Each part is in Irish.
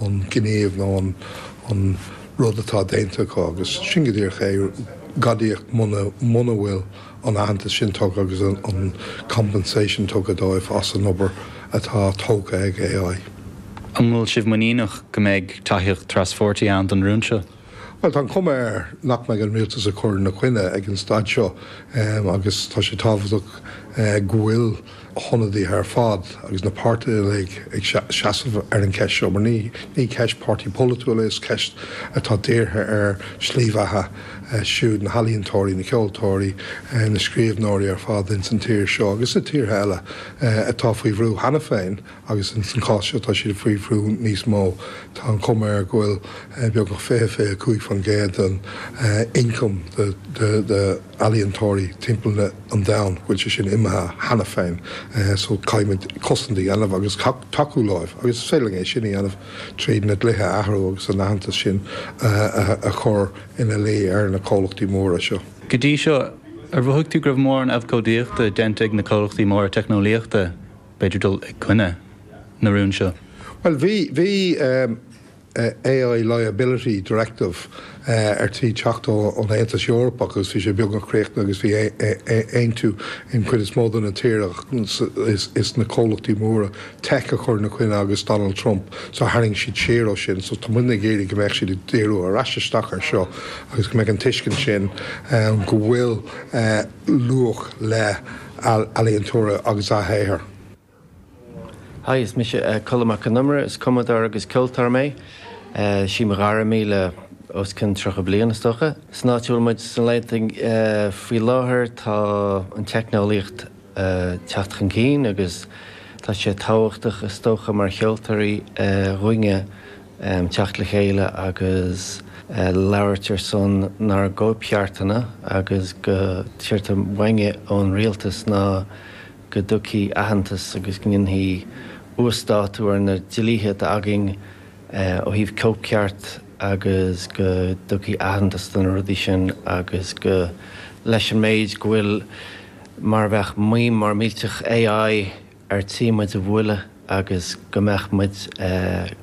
an gníomh nó an rud atá déanta acu, agus sin go díreach é, gadaíocht, muna bhfuil an aitheantas sin tugtha agus an compensation tugtha dóibh as an obair atá tógtha ag AI. An bhfuil sibh muiníneach go mbeidh tacaíocht traspháirtí ann don rún seo? Bhuel, tá an chuma air nach mbeidh an rialtas ag cur ina coinne ag an staid seo agus tá sé tábhachtach go bhfuil na hionadaithe ar fad agus na páirtithe uilig ag seasamh ar an cheist seo mar ní ceist páirtí polaitiúil é, is ceist atá dírithe ar shlí bheatha siúd na healaíontóirí, na ceoltóirí, na scríbhneoirí ar fad ins an tír seo agus i tíortha eile atá faoi bhrú cheana féin. agus ins an chás seo tá siad ag faoi bhrú níos mó. Tá an chuma air go bhfuil beagnach 20, 25 faoin gcéad den ioncam d'ealaíontóirí timpeall an domhain, go bhfuil sé sin imithe cheana féin. So caithfimid cosaint a dhéanamh agus tacú leo agus is féidir linn é sin a dhéanamh tríd na dlíthe a athrú agus an aitheantas sin a chur ina luí ar na comhlachtaí móra seo. Go dtí seo, ar mhothaigh tú go raibh mórán abhcóidíochta déanta ag na comhlachtaí móra teicneolaíochta? b'fhéidir dul i gcoinne na rún seo. Bhuel, bhí, bhí eh, AI liability directive eh ar tí teacht ón Aontas Eorpach agus bhí sé beagnach críochnaithe agus bhí eh, eh, eh, aontú an chuid is mó de na tíortha ach is, is na comhlachtaí móra tech a chuir ina choinne agus Donald Trump, so tharraing siad siar ó sin so tá muidne ag iarraidh go mbeadh siad ag díriú ar ais isteach ar seo agus go mbeidh an tuiscint sin ann go bhfuil eh, luach le healaíontóirí agus a shaothair. Hi, is mise Colm Mac Con Iomaire. Is cumadóir agus ceoltóir mé. Sí mo ghairm í le os cionn 30 bliain, is dócha. San áit a bhfuil muid sna laethanta faoi láthair, tá an teicneolaíocht ag teacht chun cinn agus tá sé tábhachtach, is dócha, mar cheoltóirí, dhúinne um theacht le chéile agus labhairt ar son nár gcóipcheartanna agus go dtí atá uainne ón rialtas ná go dtugthaí aitheantas agus go ndéanfaí uasdátú ar na dlíthe atá againn ó thaobh cóipcheart agus go dtugthaí aitheantas do na rudaí sin agus go leis an méid go bhfuil mar a bheadh maidhm mhór mhillteach AI ar tí muid a bhualadh agus go mbeadh muid,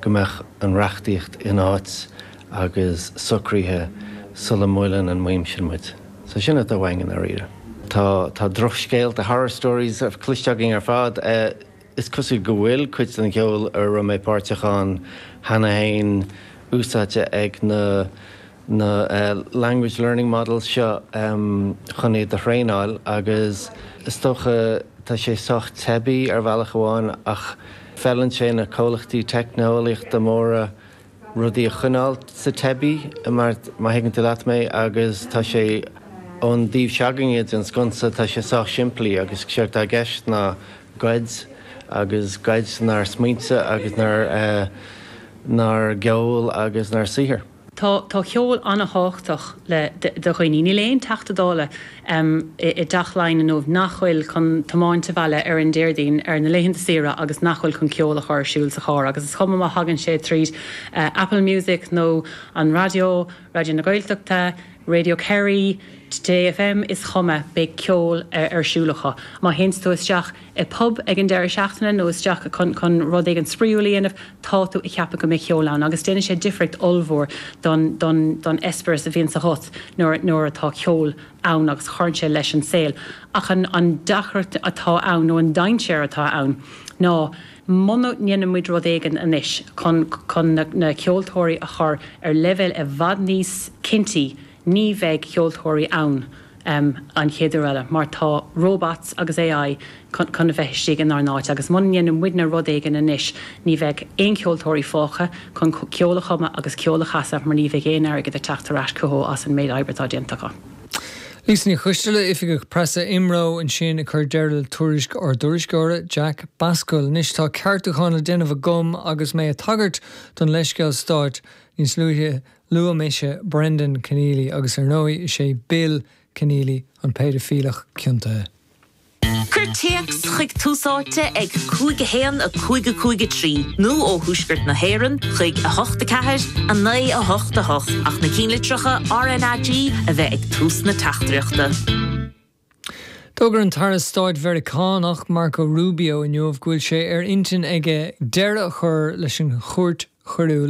go mbeadh an reachtaíocht in áit agus socraithe sula mbuaileann an mhaidhm sin muid. So sin atá uainn i ndáiríre. Tá, tá drochscéalta, horror stories, cloiste againn ar fad. Is cosúil go bhfuil cuid den cheol a raibh mé páirteach ann cheana fhéin úsáidte ag na, na Language Learning Models seo chun iad a thraenáil agus is dócha tá sé sách teibí ar bhealach amháin ach feileann sé na comhlachtaí teicneolaíochta móra rudaí a choinneáil sa teibí má thuigeann tú leat mé agus tá sé ón dtaobh se'againne den sconsa tá sé sách simplí agus sé atá i gceist ná goid agus goid ár smaointe agus ár ár gceol agus ár saothar. Tá ceol an-tábhachtach do dhaoine. Níl aon Teachta Dála i dTeach Laighean inniu nach bhfuil chun tiomáint abhaile ar an Déardaoin ar na laethanta saoire agus nach bhfuil chun ceol a chur ar siúl sa charr agus is cuma má thagann sé tríd Apple Music nó an raidió, Raidió na Gaeltachta, Radio Kerry, Today FM, is cuma, beidh ceol ar siúl acu. Má théanns tú isteach i bpub ag an deireadh seachtaine nó isteach chun rud éigin spraíúil a dhéanamh, tá tú ag ceapadh go mbeidh ceol ann agus déanann sé difríocht ollmhór don eispéireas a bhíonn agat nuair atá ceol ann agus cuireann sé leis an saol. Ach an deacracht atá ann, nó an dainséar atá ann ná muna ndéanann muid rud éigin anois chun na ceoltóirí a chur ar leibhéal i bhfad níos cinntí, ní bheidh ceoltóirí ann. an chéad uair eile, mar tá robots agus AI chun a bheith istigh inár n-áit agus muna ndéanann muidne rud éigin anois, ní bheidh aon cheoltóirí fágtha chun ceol a chumadh agus ceol a chasadh mar ní bheidh aon airgead ag teacht ar ais chucu as an méid oibre atá déanta acu. Lisa Ní Choisteala, Oifigeach Preasa IMRO ansin ag cur deireadh le tuairisc ár dtuairisceora, Jack Bascomhail. Anois tá ceartúchán le déanamh agam agus mé a tagairt don leithscéal stáit níos luaithe. Luaigh mise Brendan Kenneally agus ar ndóigh is é Bill Kenneally an péidifíleach ciontaithe. Cuir téacs chuig Tús Áite ag 5 1 5 5 3 nó ó Thuaisceart na hÉireann chuig 8 4 9 8 8 ach na cinnlitreacha RNAG a bheith ag tús na teachtaireachta. D'fhógair an tAire Stáit Mheiriceánach, Marco Rubio, inniu go bhfuil sé ar intinn aige deireadh a chur leis an Chúirt Choiriúil